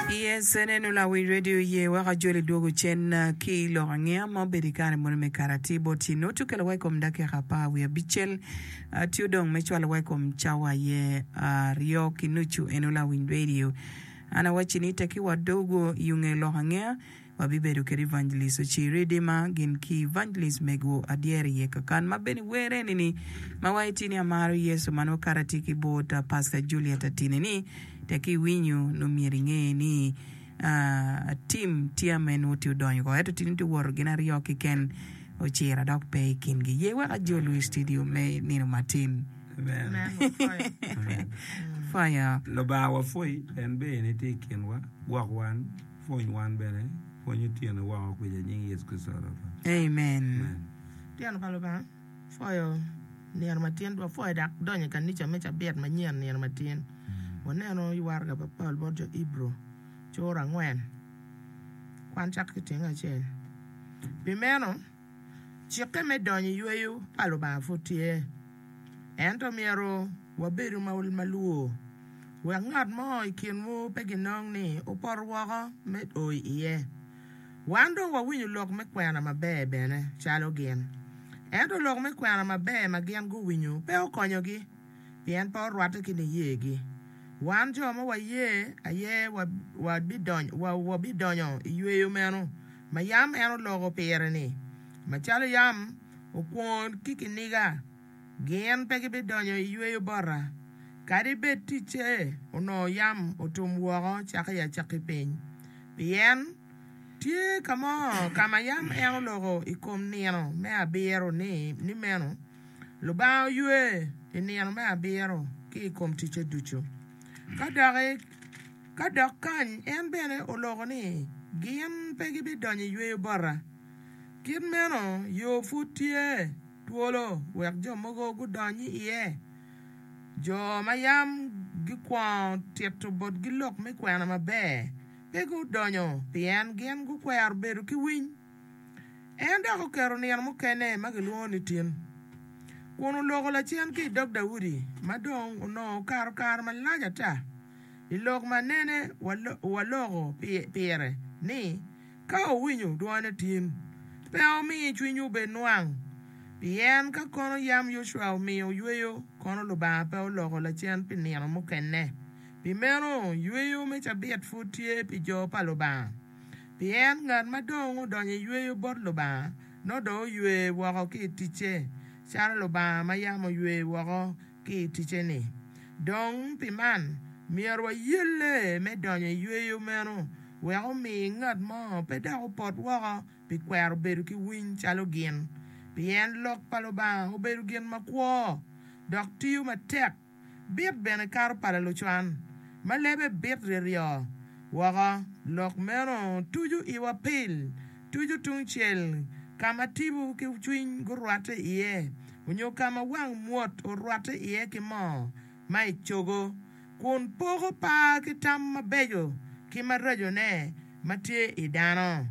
Yes, aneno lawic radio oye weko ajol idwogo cen ki lok angeya ma obedo i kare moni me kare atir bot ci nongo ci okelo wa i kom dakika apar wiye abicel tye odong me cwalo wa i kom cawa aye aryo ki nucu en o lawic radio an awacci ni teki wa dogo i onge lok angeya wabibedo kede Evangelist Ocir Idima gin ki Evangelist Mego Adyeri Yeka kan ma bene wer eni ni ma wa itye ni amaro Yecu ma nongo kato atye ki bot Pastor Juliet Atine ni tek iwinyo nongo myero inge ni team tye ame nongo tye odonyo ko ento tye nongo woto gin aryo kiken Ocira dok pe ikin gi ye wek ajo lwee studio me nino matin. Fire. Lubanga wapwoyi en bene tye ikinwa gwok wan. Pwony wan bene, pwonyo tyene woko kwica i nying Yecu Kricito Rwotwa. Amen. Tyen pa Lubanga pwoyo nino ma tin. Wapwoyo dok donyo i kanica me cabit manyen nino ma tin. Waneno i waraga pa Paulo bot jo Ibru, cura angwen, kwan cako ki tyenge acel. Pi meno. Cikke me donyo i yweyo pa Lubanga pud tye, ento myero wabedu ma walwor wek ngat mo i kinwu pe ginong ni opoto woko me o i iye. Wan dong wawinyo lok me kwena maber bene calo gin, ento lok me kwena maber ma gin guwinyo pe okonyogi, pien pe orwatte ki niyegi. Wan jo ma waye aye wabidonyo i yweyo meno. ma yam en oloko pire-ni, macalo yam okwongo ki kiniga, gin pe gibidonyo i yweyo bota, kadi bed ticce onongo yam otum woko caka i acakki piny. Pien tye ka mo ka ma yam en oloko i kom nino me abiro ni, ni meno, Lubanga oywe i nino me abiro ki i kom ticce ducu. Ka doki. Ka dok kany, en bene oloko ni, Gin pe gibidonyo i yweyo bota. Kit meno, yo pud tye twolo wek jo mogo gudony iye. Jo ma yam gikwongo tito botgi lok me kwena maber pe gudonyo pien gin gukwero bedo ki winy. En dok oketo nino mukene ma gilwongo ni tin, kun oloko lacen ki i dog Daudi ma dong onongo okato kare malac ata. I lok ma nene waloko pire ni, Ka wuwinyo dwone tin, pe wumi cwinywu bed nwang, pien ka kono yam Yocwa omiyo oyweyo, kono Lubanga pe oloko lacen pi nino mukene. Pi meno, yweyo me cabit pud tye pi jo pa Lubanga, pien ngat ma dong odonyo i yweyo bot Lubanga nongo dong oywe woko ki i ticce, calo Lubanga ma yam oywe woko. ki i ticce-ni. Dong pi man, myero wayelle me donyo i yweyo meno wek omi ngat mo pe dok opot woko pi kwero bedo ki winy calo gin. Pien Lok pa Lubanga obedo gin makwo dok tiyo matek, bit bene kato pala lucwan, ma lebe bit ryeryoo woko, lok meno tuco iwa pil. tuco tungcel ka ma tipo ki cwiny gurwatte iye, onyo ka ma wang mwot orwatte iye ki moo ma i cogo, kun poko par ki tam mabeco ki maracone ma tye i dano.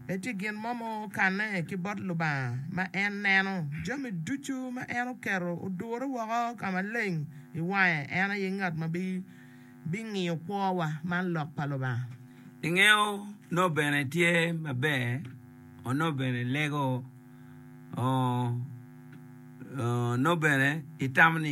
Pe tye gin mo ma okanne ki bot Lubanga ma en neno. Jami ducu ma en oketo odure woko ka maleng i wange, en aye ngat ma bi. bingiyo kwowa man lok pa Lubanga. Ingeyo noo bene tye maber o noo bene lego o noo bene itamo ni.